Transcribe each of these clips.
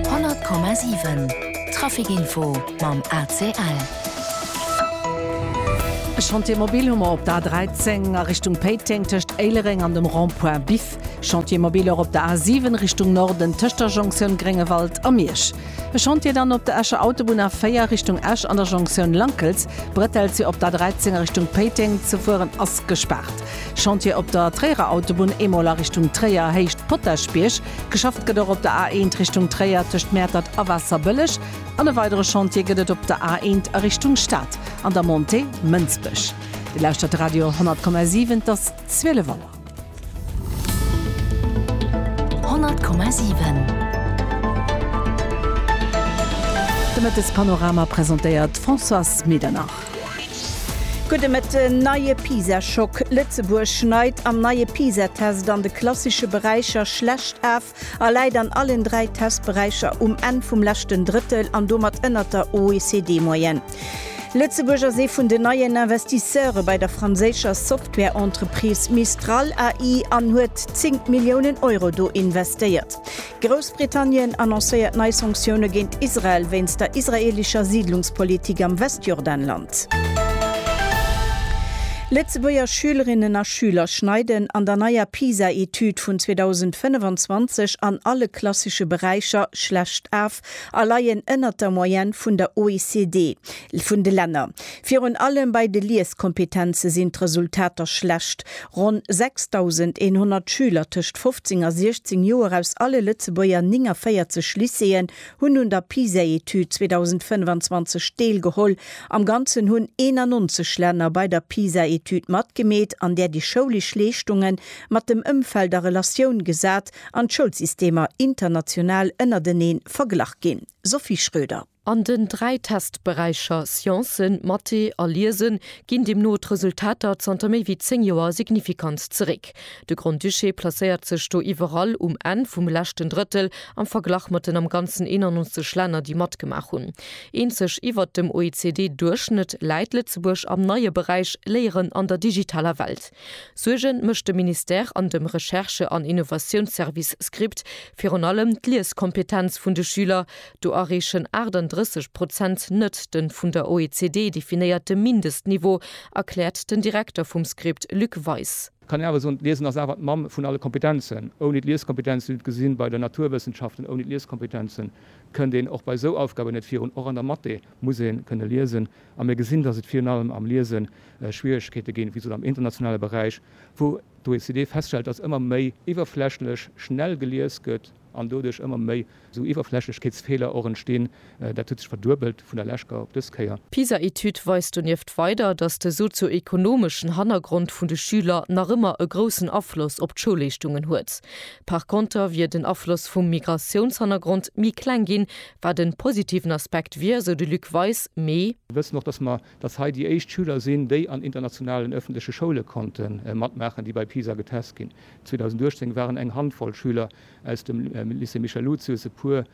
100,7 Trafic Info mam ACL. E Chantier mobile hu mer op der A 13 a Richtung Péiteng tëscht Éilereng an dem Rond-point Biff. Chantier mobile och op der A 7 Richtung Norden tëscht der Jonktioun Gréngewald a Miersch. E Chantier dann op der Escher Autobunn A 4 Richtung Esch an der Jonktioun Lankels. D'Bretelltür op der A 13 a Richtung Péiteng ze fueren ass gespaart. Chantier op der Tréierer Autobunn, eemol a Richtung Tréier, Héicht Potaschbierg. Geschafft gëtt och op der A1 Richtung Tréier tëscht Mäertert a Waasserbëlleg an e weidere Chantier gëtt et op der A1 a Richtung Stad an der Montée Mënsbech. Dir lauschtert de Radio 10,7, et ass 12 Auer. 10,7. De Mëttespanorama presentéiert d'Françoise Medernach. Gudde Mëtten, Neie Pisa-Schock, Lëtzebuerg schneit am neie Pisa-Test an de klassesche Beräicher schlecht af a läit an allen dräi Testberäicher um Enn vum leschten Drëttel an domat ënnert der OECD-Moyenne. Lëtzebuerg ass ee vun den neien Investisseure bei der franséischer Software-Entreprise Mistral AI an huet 10 Milliounen Euro do investéiert. Groussbritannien annoncéiert nei Sanktioune géint Israel wéinst der israeelescher Siidlungspolitik am Westjordanland. Lëtzebuerger Schülerinnen a Schüler schneiden an der neier PISA-Etüd vun 2025 an alle klassesche Beräicher schlecht af, a leien ënnert der Moyenne vun der OECD, vun de Länner. Virun allem bei de Lieskompetenze sinn d'Resultater schlecht. Ronn 6.100 Schüler tëscht 15 a 16 Joer aus alle Lëtzebuerger 49 Lycéeën hunn un der PISA-Etüd 2025 deelgeholl. Am Ganzen hunn 91 Länner bei der PISA-Etüd matgemeet, an där déi schoulesch Leeschtungen mat dem Ëmfeld a Relatioun gesat an d'Schoulsystemer international ënnerteneen verglach ginn, Sophie Schröder. An den dräi Testberäicher Sciencen, Mathé a Liesen ginn deemno d'Resultater zanter méi wéi 10 Joer signifikant zeréck. De Grand-Duché placéiert sech do iwwerall um Enn vum leschten Drëttel am Verglach mat den am Ganzen 91 Länner, déi matgemaach hunn. Eenzeg iwwert dem OECD-Duerchschnëtt läit Lëtzebuerg am neie Beräich Léieren an der digitaler Welt. Suerge mécht dem Ministère an dem Recherche an Innovatiounsservice SCRIPT virun allem d'Lieskompetenz vun de Schüler. Do erreechen 38 Prozent net den vun der OECD definéierte Mindestniveau, erkläert den Direkter vum SCRIPT Luc Weis. Et kann een awer soen, d'Liesen ass awer d'Mamm vun alle Kompetenzen. Ouni d'Lieskompetenz, wéi mir et gesi bei de Naturwëssenschaften, ouni d'Lieskompetenzen kënnt een och bei esou Aufgaben net virun. Och an der Mathé muss ee kënne liesen. A mir gesinn, dass et virun allem am Liesen Schwieregkeete ginn, wéi gesot, am internationale Beräich, wou d'OECD feststellt, datt ëmmer méi iwwerflächlech schnell gelies gëtt an doduerch ëmmer méi esou Iwwerflächlechkeetsfeeler och entstinn. Dat huet sech verduebelt vun der leschter op dës Kéier. D'PISA-Etüd weist donieft weider, datt de sozio-ekonomeschen Hannergrond vun de Schüler nach ëmmer e groussen Afloss op d'Schoulleeschtungen huet. Par konter wier den Afloss vum Migratiounshannergrond méi kleng ginn, wat e positiven Aspekt wier, sou de Luc Weis, mee. Mir wëssen och, datt mer dass hei déi éischt Schüler sinn, déi an internationalen ëffentleche Schoule konnte matmaachen, déi bei PISA getest ginn. 2018 waren eng Handvoll Schüler aus dem Lycée Michel Lucius, e puer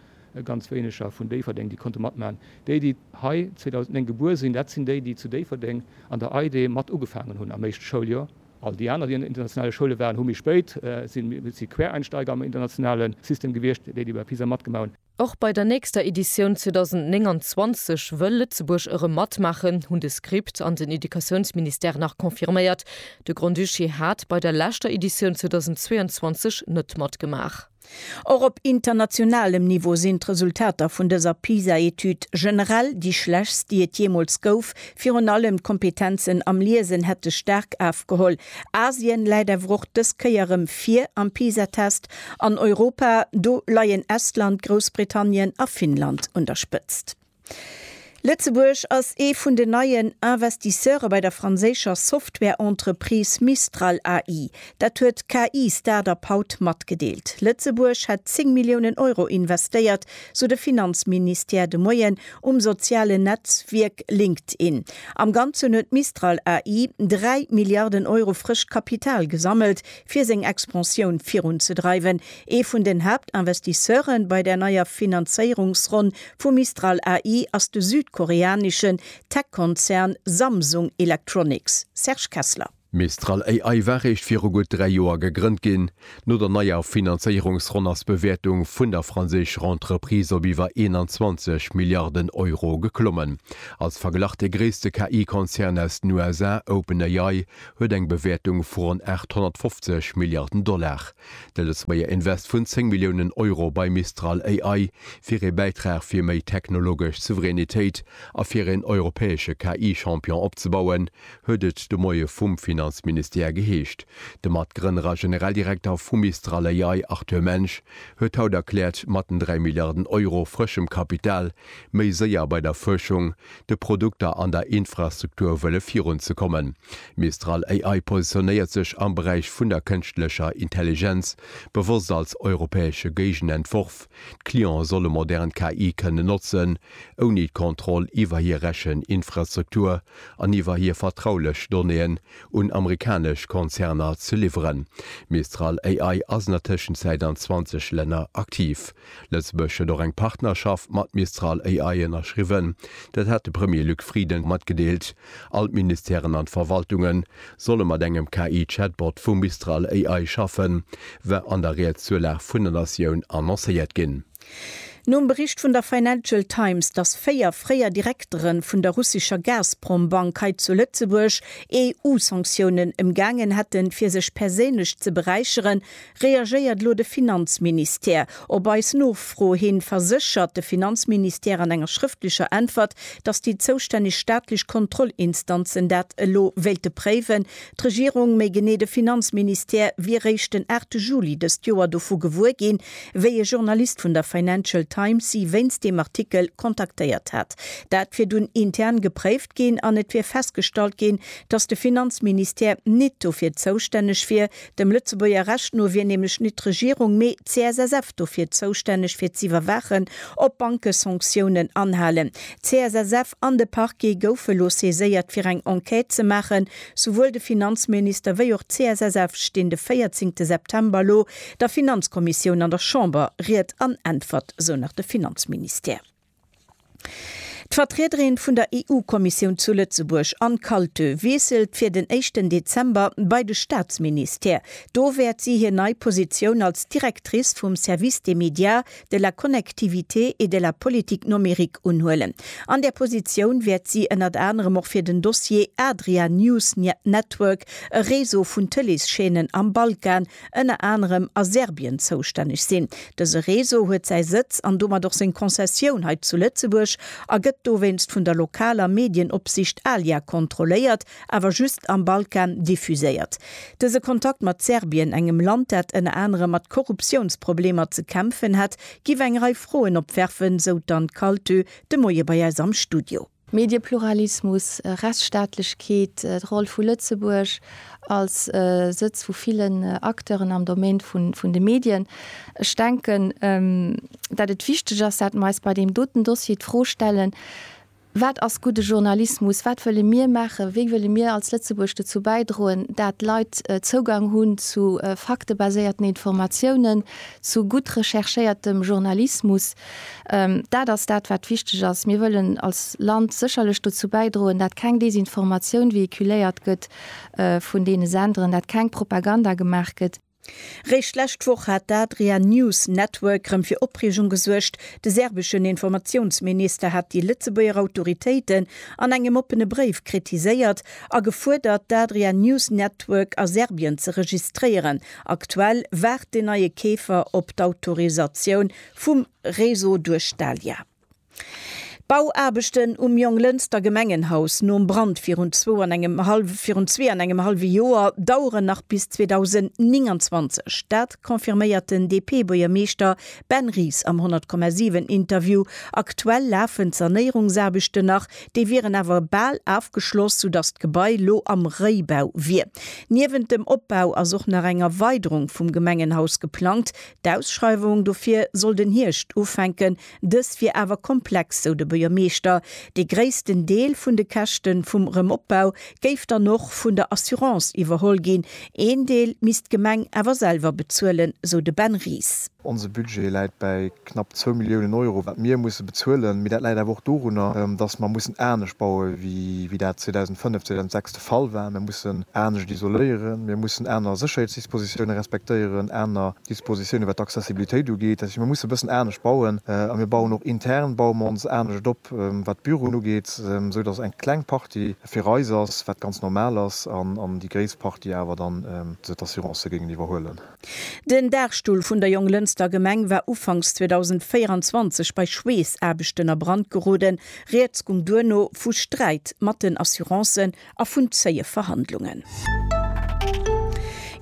ganz wéineger vun Déifferdeng, déi konnte matmaachen. Déi, déi hei 2009 gebuer sinn, dat sinn déi, déi zu Déifferdeng an der EIDE mat ugefaangen hunn am éischte Schouljoer. All déi aner, déi an internationale Schoule waren, hu méi spéit, si Quereinsteiger am internationale System gewiescht, déi, déi bei PISA matgemaach hunn. Och bei der nächster Editioun 2029 wëll Lëtzebuerg erëm matmaachen, hunn de SCRIPT an den Educatiounsministère nach confirméiert. De Grand-Duché hat bei der leschter Editioun 2022 net matgemaach. Och op internationalem Niveau sinn d'Resultater vun dëser PISA-Etüd generell déi schlechtst, déi et jeemools gouf. Virun allem d'Kompetenzen am Liesen hätte staark afgeholl. Asien läit awer och dës Kéier erëm vir am PISA-Test. An Europa, do leien Estland, Groussbritannien a Finnland un der Spëtzt. Lëtzebuerg ass ee vun den neien Investisseure bei der franséischer Software-Entreprise Mistral AI. Dat huet d'KI-Startup haut matgedeelt. Lëtzebuerg hätt 10 Milliounen Euro investéiert, sou de Finanzministère de Moien um sozialen Netzwierk LinkedIn. Am Ganzen huet Mistral AI 3 Milliarden Euro frëscht Kapital gesammelt. fir seng Expansioun virunzedreiwen. Ee vun den Haaptinvestisseure bei der neier Finanzéierungsronn vu Mistral AI ass de südkoreaneschen Tech-Konzern Samsung Electronics. Serge Kessler. Mistral AI war réischt viru gutt dräi Joer gegrënnt ginn. No der neier Finanzéierungsronn ass d'Bewäertung vun der franséischer Entreprise op iwwer 21 Milliarden Euro geklommen. Als Verglach, dee gréisste KI-Konzern aus den USA, OpenAI, huet eng Bewäertung vu ronn 850 Milliarden Dollar. De Lëtzebuerger Invest vun 10 Milliounen Euro bei Mistral AI wier ee Bäitrag fir méi technologesch Souveränitéit a fir een europäesche KI-Champion opzebauen, huet et de Moie vum Finanzministère geheescht. De Matgrënner a Generaldirekter vu Mistral AI Arthur Mensch huet haut erkläert, matten 3 Milliarden Euro frëschem Kapital méi séier bei der Fuerschung, de Produkter an der Infrastruktur wëlle virun ze kommen. Mistral AI positionéiert sech am Beräich vun der kënschtlecher Intelligenz bewosst als europäesche Géigenentworf, d'Cliente solle modern KI kënnen notzen, ouni d'Kontroll iwwer hir Recheninfrastruktur an iwwer hir vertraulech Donnéeën un amerikanesch Konzerner ze liwweren. Mistral AI ass an der Tëschenzäit an 20 Länner aktiv. Lëtzebuerg huet och eng Partnerschaft mat Mistral AI ënnerschriwwen. Dat hat de Premier Luc Frieden matgedeelt. All d'Ministèren an d'Verwaltunge solle mat engem KI-Chatbot vu Mistral AI schaffen, war an der Reaktiounlag vun der Natioun annoncéiert ginn. Nom Bericht vun der Financial Times, dass véier fréier Direktere vun der russescher Gazprom-Bank hei zu Lëtzebuerg EU-Sanktiounen ëmgaangen hätten, fir sech perséinlech ze beräicheren, Reagéiert elo de Finanzministère? Op eis Nofro hin verséchert de Finanzministère an enger schrëftlecher Äntwert, datt déi zoustänneg staatlech Kontrollinstanzen dat elo wéilte préiwen. D'Regierung, méi genee de Finanzministère, wier réischt den 8 Juli dëst Joer dovu gewuer ginn, wéi e Journalist vun der Financial Times si wéinst deem Artikel kontaktéiert hat. Dat wier dunn intern gepréift ginn an et wier festgestallt ginn, datt de Finanzministère nit dofir zoustänneg wier, Dem Lëtzebuerger Recht no wier nämlech nit d'Regierung, mee d'CSSF dofir zoustänneg fir z'iwwerwaachen, ob d'Banke Sanktiounen anhalen. D'CSSF an de Parquet goufe lo saiséiert fir eng Enquête ze maachen. Souwuel de Finanzminister wéi och d'CSSF stinn de 14 te September lo der Finanzkommissioun an der Chamber Ried an Äntwert, sou nach de Finanzministère. D'Vertriederin vun der EU-Kommissioun zu Lëtzebuerg, Anne Kaltö, wiesselt fir den éischten Dezember bei de Staatsministère. Do wäert si hir nei Positioun als Directrice vum Service des médias, de la connectivité et de la politique nomérique unhuelen. An där Positioun wäert si ënnert anerem och fir den Dossier Adria News Network, e Réseau vun Tëlees-Chaînen am Balkan, ënner anerem a Serbien zoustänneg sinn. Dëse Réseau huet säi Sëtz an domat och seng Konzessioun hei zu Lëtzebuerg a gëtt dowéinst vun der lokaler Medienopsicht ALIA kontrolléiert, awer just am Balkan diffuséiert. Dëse Kontakt mat Serbien, engem Land dat ënner anerem mat Korruptiounsproblemer ze kämpfen hätt, giff eng Rei Froen opwerfen, sou d'Anne Kaltö de Moie bei eis am Studio. Mediepluralismus, Rechtsstaatlechkeet, d'Roll vu Lëtzebuerg als Sëtz vu villen Acteuren am Domaine vun de Medien. Ech denken, datt et wichteg ass, datt mer eis bei deem doten Dossier d'Fro stellen, Wat ass gudde Journalismus? Wat wëlle mir maachen? Wéi wëlle mir als Lëtzebuerg dozou bäidroen, datt Leit Zougang hunn zu faktebaséierten Informatiounen, zu gutt recherchéiertem Journalismus? Dat ass dat, wat wichteg ass. Mir wëllen als Land sécherlech dozou bäidroen, dat keng Desinformatioun vehiculéiert gëtt vun deene Senderen, dat keng Propaganda gemaach gëtt. Réischt d'lescht Woch hat d'Adria News Network rëm fir Opreegung gesuergt. De serbeschen Informatiounsminister hat déi Lëtzebuerger Autoritéiten an engem oppene Bréif kritiséiert a gefuerdert, d'Adria News Network a Serbien ze registréieren. Aktuell waart den neie Keefer op d'Autorisatioun vum Réseau duerch d'ALIA. D'Bauaarbechten um Jonglënster Gemengenhaus nom Brand virun zwou an engem hallwe virun zwee an engem hallwe Joer daueren nach bis 2029. Dat confirméiert den DP-Buergermeeschter Ben Ries am 100,7 Interview. Aktuell lafen d'Sanéierungsaarbechten nach, déi wieren awer bal afgeschloss, soudass d'Gebai lo am Réibau wier. Niewent dem Opbau ass och nach eng Erweiderung vum Gemengenhaus geplangt, D'Ausschreiwung dofir soll den Hierscht ufänken. Dës wier awer komplex, sou de Buergermeeschter. Dee gréissten Deel vun de Käschte vum Remopbau géif dann och vun der Assurance iwwerholl ginn. Een Deel misst d'Gemeng awer selwer bezuelen, sou de Ben Ries. Onse Budget läit bäi knapp zwou Milliounen Euro, wat mir musse bezuelen. Mee dat läit awer och dorunner, datt mer mussen anescht baue wéi dat 2005, 2006 Fallwäen, mir mussen anescht isoléieren, mir mussen aner Sécherheetsdispositiounen respektéieren, aner Dispositiounen, wat d'Accessibilitéit ugeet. Dat heescht, mir mussen e bëssen anescht bauen. A mir bauen och intern, baue mer ons anescht op, wat d'Büroen ugeet, esou datt eng kleng Partie fir eis ass, wat ganz normal ass, an déi gréisst Partie awer dann d'Assurancë géingen iwwerhuelen. Den Daachstull vun der Jonglënster Gemeng war ufanks 2024 bei Schweessaarbechten a Brand geroden. Rieds gung duerno vu Sträit mat den Assurancen a vun zéie Verhandlungen.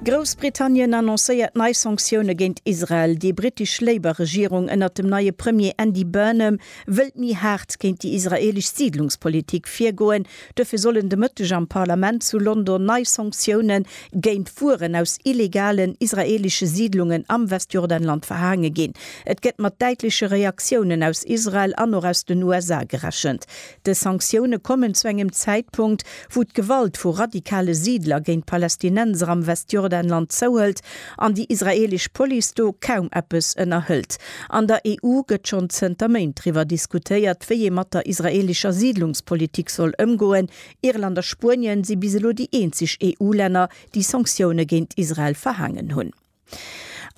Groussbritannien annoncéiert nei Sanktioune géint Israel. Déi brittesch Labour-Regierung ënnert dem neie Premier Andy Burnham wëllt méi haart géint déi israeelesch Siidlungspolitik virgoen, Duerfir sollen de Mëtteg am Parlament zu London nei Sanktioune géint Fueren aus illegalen israeelesche Siidlungen am Westjordanland verhaange ginn. Et gëtt mat däitleche Reaktiounen aus Israel an och aus den USA gerechent. Dës Sanktioune kommen zu engem Zäitpunkt, wou d'Gewalt vu radikale Siidler géint d'Palästinenser am Westjordanland zouhëlt an déi israeelesch Police do kaum eppes ënnerhëlt. An der EU gëtt schonn zënter Méint driwwer diskutéiert, wéi ee mat der israeelescher Siidlungspolitik soll ëmgoen. Irland a Spuenien si bis elo déi eenzeg EU-Länner, déi Sanktioune géint Israel verhaangen hunn.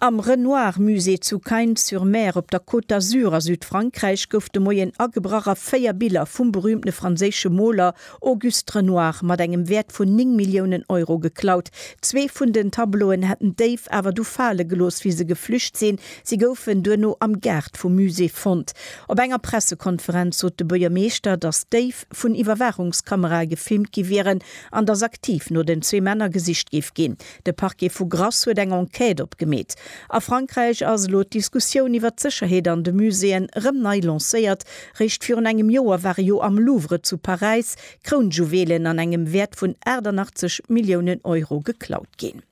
Am Renoir Musée zu Cagnes-sur-Mer op der Côte d'Azur a Südfrankräich gouf de Moien agebrach a véier Biller vum berüümtene franséische Moler Auguste Renoir mat engem Wäert vun 9 Milliounen Euro geklaut. Zwee vun den Tableauen hätten d'Déif awer du fale gelooss, wéi se geflücht sinn. Si goufen duerno am Gaart vum Musée fonnt. Op enger Pressekonferenz sot de Buergermeeschter, datt d'Déif vun Iwwerwaachungskamerae gefilmt gi wieren an datt aktiv no den zwee Männer gesicht géif ginn. De Parquet vu Grasse huet eng Enquête opgemeet. A Frankräich ass elo d'Diskussioun iwwer d'Sécherheet an de Muséeën erëm nei lancéiert. Réischt virun engem Joer ware jo am Louvre zu Paräis Krounjuwelen an engem Wäert vun 88 Milliounen Euro geklaut ginn.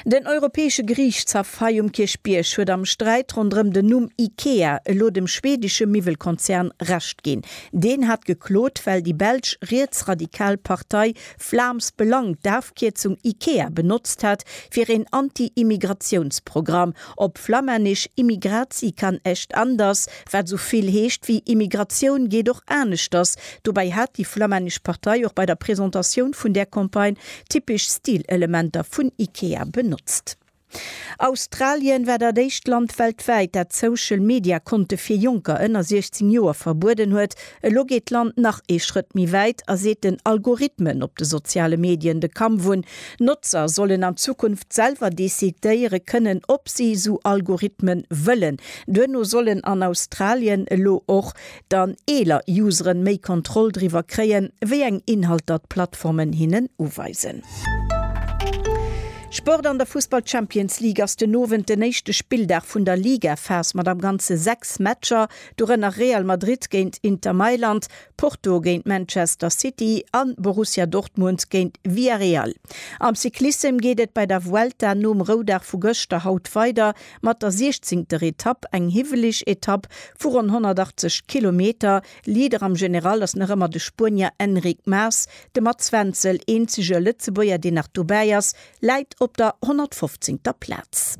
Den Europäesche Geriichtshaff hei um Kierchbierg huet am Sträit ronderëm den Numm Ikea elo dem schweedesche Miwwelkonzern Recht ginn. Deen hat geklot, well déi belsch rietsradikal Partei Vlaams Belang d'Afkierzung Ikea benotzt hat fir een Anti-Immigratiounsprogramm, op Flammännesch Immigratie kan echt anders, wat sou vill heescht wéi Immigratioun geet och aneschters. Dobäi hat déi flammännesch Partei och bei der Presentatioun vun där Campagne typesch Stilelementer vun Ikea benotzt. Australien war dat éischt Land weltwäit, dat Social Media Konte fir Jonker ënner 16 Joer verbueden huet. Elo geet d'Land nach ee Schrëtt méi wäit a seet den Algorithmen op de soziale Medien de Kampf un. Notzer sollen an Zukunft selwer decidéiere kënnen, ob si esou Algorithmen wëllen. Duerno sollen an Australien elo och dann eeler Useren méi Kontroll driwwer kréien, wéi eng Inhalter d'Plattformen hinnen uweisen. Sport An der Fussball Champions League ass den Owend den éischte Spilldag vun der Ligaphas mat am Ganze 6 Matcher, dorënner Real Madrid géint Inter Mailand, Porto géint Manchester City a Borussia Dortmund géint Villarreal. Am Cyclissem geet et bei der Vuelta nom Roudag vu gëschter haut weider Mat der siechzéngter Etapp, eng hiwweleg Etapp vu ronn 180 Kilometer, Leader am General ass nach ëmmer de Spuenier Enric Mas, de Mats Wenzel, eenzege Lëtzebuerger deen nach dobäi ass, läit op der 115. Plaz.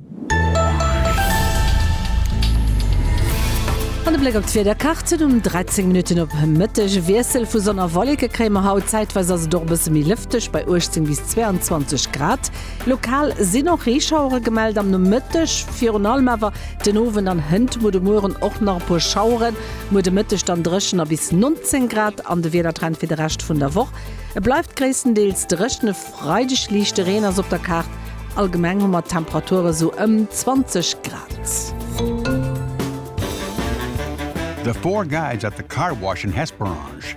An e Bléck op d'Wiederkaart, Et um 13 Minutten op Mëtteg e Wiessel vu Sonn a Wolleke kréie mer haut, zäitweis ass et och e bësse méi lëfteg bei 18 bis 22 Grad. Lokal sinn och Reeschauere gemellt am Nomëtteg, virun allem awer den Owend an hënt muer de Mueren och nach e puer Schaueren. Muer de Mëtteg dann dréchen a bis 19 Grad an de Wiedertrend fir de Rescht vun der Woch, Et bleift gréisstendeels dréchen, e Freideg liichte Reen ass op der Kaart. Allgemeng hu mer Temperature sou ëm 20 Grad. The Four Guys at the Car Wash in Hesperange.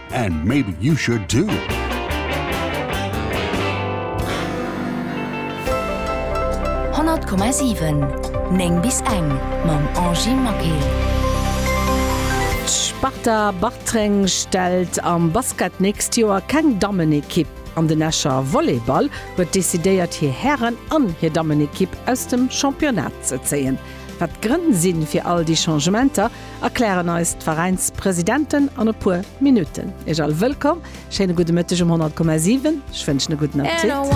And maybe you should too! Honnert Komma siwen, néng bis eng, mam Angie Maquet. D'Sparta Bartreng stellt am Basket d'nächst Joer keng Dammenekipp an. Den Escher Volleyball huet decidéiert hir Hären an hir Dammenekipp aus dem Championnat ze zéien. Wat d'Grënn si fir all déi Changementer, erklären eis d'Veräinspresidenten an e puer Minutten. Iech all wëllkomm, schéine gudde Mëtteg um 100,7. Ech wënschen e gudden Appetit.